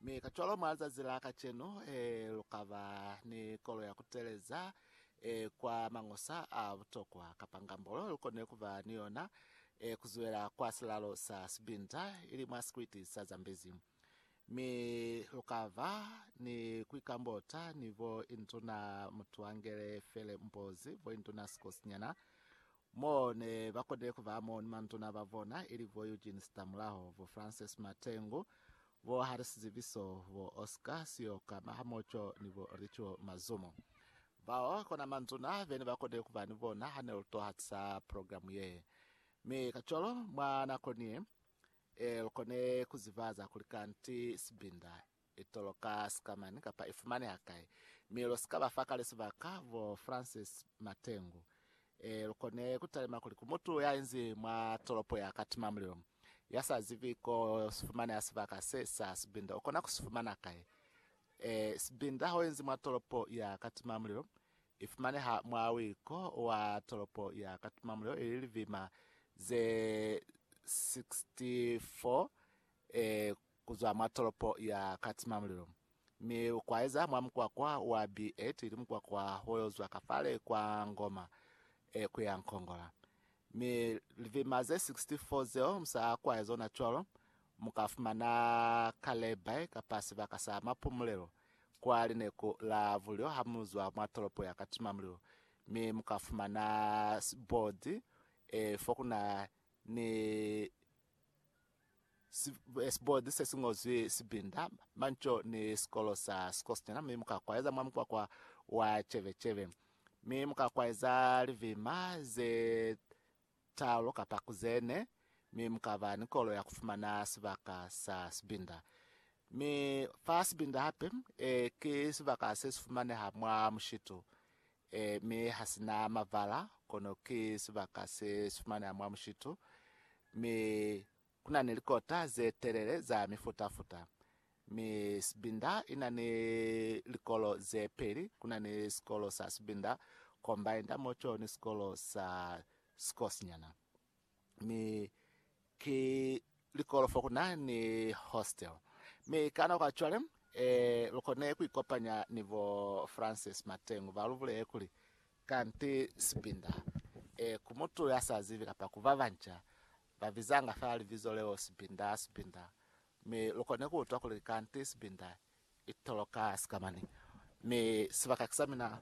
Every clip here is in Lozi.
Mi kacwalo mwa lizazi la kacenu, lukaba ni kolo ya kuteleza kwa mañosa a butokwa, kapa ngambolo lukone kuba ni yona kuzwela kwa silalo sa sibinda, ili mwa sikwiti sa Zambezi. Mi lukaba ni kuikambota ni bo Induna Mutuangele Fele Mbozi, bo Induna Sikosinyana, Mo ne ba konile ku ba mo ni manduna ba bona, ili bo Eugene Sitamulaho, bo Francis Matengu, bo Harry Sizibiso, bo Oscar Siyoka Mahamoco ni bo Richo Mazumo. Bao kona manduna be ne ba konile ku ba ni bona ha ne lu to hatisa progilamu ye. Mi kacwalo, mwa nako ni ye, lu kone ku ziba za kuli kanti sibinda I toloka sikamani kapa i fumaneha kai? Mi lu si ka ba fa kale sibaka, bo Francis Matengu. Ee, lu kone ku talima kuli ku mutu ya inzi mwa tolopo ya ka tima mulilo, ya sa zibi ko si fumaneha sibaka se sa sibinda. U kona ku si fumana kai? Ee, sibinda ho inzi mwa tolopo ya ka tima mulilo. I fumaneha mwa wiko wa tolopo ya ka tima mulilo, ili libima ze 64 ee, kuzwa mwa tolopo ya Katimamulilo, mi ukwaeza mwa mukwakwa wa B8 ili mukwakwa woyozwa kafale kwa Ngoma e kuya Nkongola. Mi livima ze 64 zeo musaakwae zona cwalo, mukafumana ka layby kapa sibaka sa mapumulelo kwa lineku la bulyo hamuzwa mwa tolopo ya Katimamulilo, mi mukafumana sibodi e fokuna ni Sibodi se si ñozwi sibinda, manco, ni sikolo sa sikosinyana, mi mu ka kwaeza mwa mukwakwa wa cebecebe. Mi mu ka kwaeza libima ze talu kapa ku ze ne, mi mu ka ba ni kolo ya ku fumana sibaka sa sibinda. Mi fa sibinda hape, ee, ki sibaka se si fumaneha mwa mushitu. E, mi ha si na mavala, kono ki sibaka se si fumaneha mwa mushitu. Mi ku na ni likota ze telele za mifuta-futa. Mi sibinda i na ni likolo ze peli, ku na ni sikolo sa sibinda, kombainda, moco, ni sikolo sa sikosinyana. mi ki likolofo ku na ni hostel mi ka nako ya cwale eh, lu kone ku ikopanya ni bo Francis Matengu ba lu bulele kuli, Kanti Sibinda eh, ku mutu ya sa zibi kapa ku ba banca ba bizanga fela libizo leo Sibinda, Sibinda, mi lu kone ku utwa kuli kanti Sibinda Itoloka sikamani mi sibaka kisamina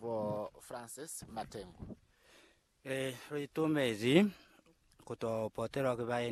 bo Francis Matengu. Lu itumezi kuto potelwa ki baeni.